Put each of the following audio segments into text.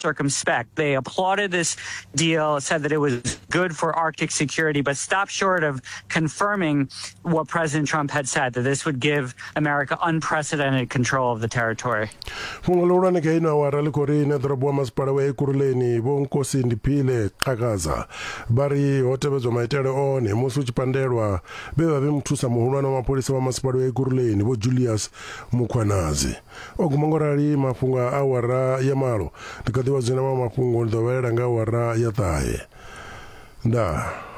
circumspect. They applauded this deal, said that it was good for Arctic security, but stopped short of confirming what President Trump had said that this would give America unprecedented control of the territory. Fhungo ḽihulwane kha ino awara ḽi khou ri ine ḓorobo wa masipala wa Ekurhuleni Vho Nkosi Ndiphile Xhakaza vha ri ho tevhedzwa maitele one musi u tshi pandelwa vhe vha vhe muthusa muhulwane wa mapholisa wa masipala wa Ekurhuleni Vho Julius Mukhwanazi. O guma ngo rali mafhungo a awara ya malo. Ndi kha ḓi vha zwina maṅwe mafhungo ndi ḓo vhalela nga awara ya ṱahe. Ndaa.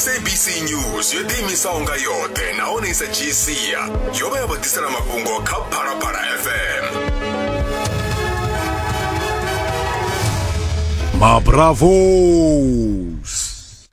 sabc news yo ḓiimisaho nga yoṱhe nahone i sa dzhii sia yo vha ya vho ḓisela mafhungo kha phalaphala fm mabravos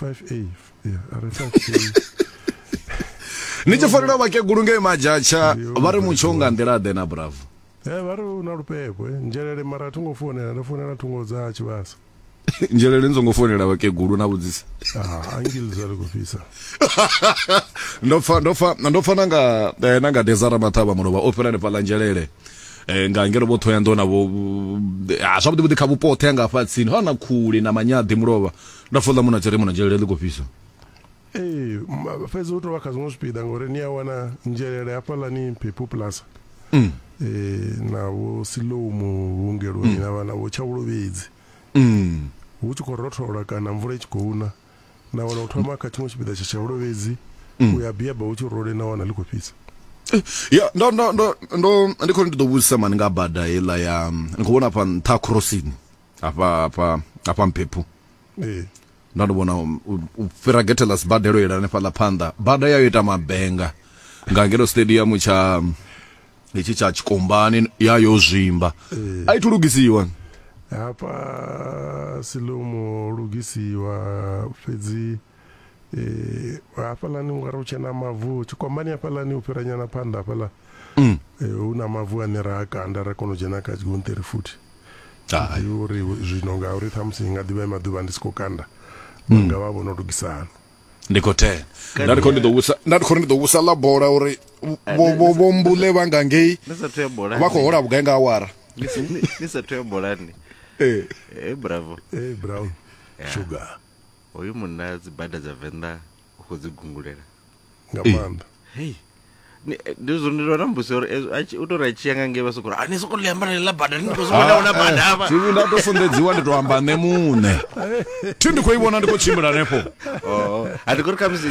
5a yeah are 5a ni tshi fanela vhakegulu ngei majatsha vha ri mutsho nga nḓila ḓe na bravo e vha ri u na lupepwe eh. nzhelele mara a thi ngo founela ndo founela thungo dza tshivhasa nzhelele ni songo founela vhakegulu na vhudzisa ah, angili zwa ri khou fhisa ndo pfa ndo pfa ndo pfa nanga eh, nanga dezara maṱhavha mulovha o fhela nefhaḽa nzhelele eh, nga ngelo vho thoya ndo na vho ah, zwavhuḓi vhuḓi kha vhupo oṱhe anga fha tsini ha na khuli na manyaḓi mulovha nda fola muna tshiremo na dzhelele ḽi khou fhisa ee fhedzi hu tou vha kha zwiṅwe zwipiḓa ngori ni a wana nzhelele hafhaḽani phepu plaza mm. ee na vho silomu vhuongeloni mm. na vha na vho tshavhulovhedzi mm. hu tshi khou rothola kana mvula i tshi khou na na wana u thoma kha tshiṅwe tshipiḓa tsha tshavhulovhedzi mm. u ya biaba hu tshi role na wana ḽi khou fhisa eh, ya ndo ndo ndo ndo ndi khou ndi ḓo vhudzisa mani nga bada heiḽa ya ni khou vhona afha nṱha crossing hafha hafha hafha mphephu ee nda ndi vhona u- u u fhira gethe ḽa sibadelo yela hanefha ḽa phanḓa bada yayo ita mabenga nga ngeno stadium tsha itshi tsha tshikombani yayo zwimba a i thu lugisiwa hafha silomo lugisiwa fhedzi eh, hafhaḽani u nga ri u tshena mavu tshikombani hafhaḽani u fhira nyana phanḓa hafhaḽa mm. eh, hu na mavu ane ra a kanda ra kona u dzhena kha tshigonṱiri futhi ḓivhi uri zwino nga uri ṱhamusi nga ḓivha e maḓuvha ndi si khou kanda mm. nga vha vho no lugisa hani ndi khou ten nda ndi khou ndi ḓo vhusa nda ndi khou ndi ḓo vhusa ḽa bola uri eh, vho mbule vha nga ngei vha khou hola vhugai nga awara ni sa thu ya bolani ee eh. hey, eh, bravo hey, brown yeah. sugar Hoyu munna dzi bada dza venḓa u khou dzi gungulela nga maanḓa hey ndi zwo ndi lona mbusi uri u tori a tshiya nga ngei vha sokora ani soko ḽiamba na ḽa bada ni to soko na una bada hafha tv nda to fundedziwa ndi to amba nṋe muṋe thi ndi khou i vhona ndi khou tshimbila hanefho oh a ndi khou ri khamusi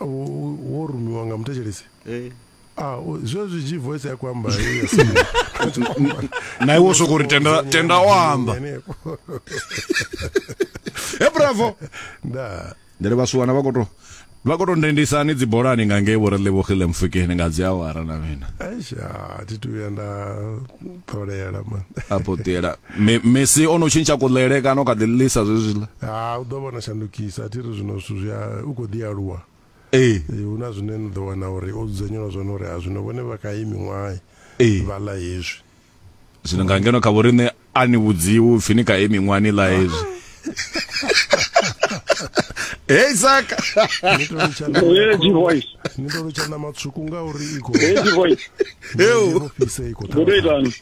wo rumiwa nga muthetshelesi eh. ah, zwe zwi dzhi voice ya ku amba na iwe soko ri tenda tenda o amba e bravo nda ndere vhasuwana vha koto vha koto ndendisani dzibolani nga ngei vho ri levogile mfukeni nga dzi awara na mina aisha thi tu ya nda ṱolela man a potela mesi o no tshintsha kuḽele kana u kha ḓi ḽisa zwezwiḽa ha u ḓo vhona shandukisa a thi ri zwino zwithu zwi u khou ḓi aluwa ee hu na zwine ni ḓo wana uri o dzudzanyelwa zwone uri a zwino vhone vha kha iyi miṅwaha vha ḽa hezwi zwino nga ngeno kha vhoriṋe a ni vhudziwi upfhi ni kha iyi miṅwaha ni ḽa hezwi hey saka ni to litsha na Lady voice ni to litsha na matswuku nga uri i khou Lady voice yo fhisa i khou Godo itani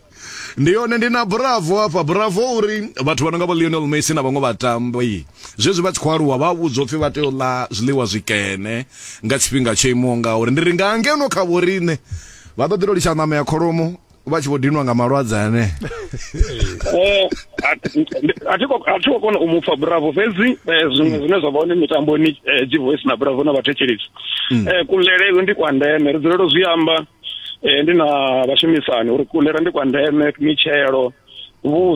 ndi yone ndi na bravo hafha bravo uri vhathu vha no nga vho lionel messi na vhaṅwe vhatambi zwezwi vha tshi khou aluwa vha vhudzwa upfi vha tea u ḽa zwiḽiwa zwikene nga tshifhinga tsho imaho nga uri ndi ri nga ngeno kha vho riṋe vha ḓo ḓi to litsha ṋama ya kholomo vha tshi vho dinwa nga malwadze ane eh, a thi khou kona u mupfa bravo fhedzi eh, zwiṅwe zwine zwa vha hone mitamboni eh, jivoice na bravo na vhathetshelisi mm. kulele ndi kwa ndeme ri dzulelo zwi amba ndi na vhashumisani uri kulera ndi kwa ndeme mitshelo vhuswa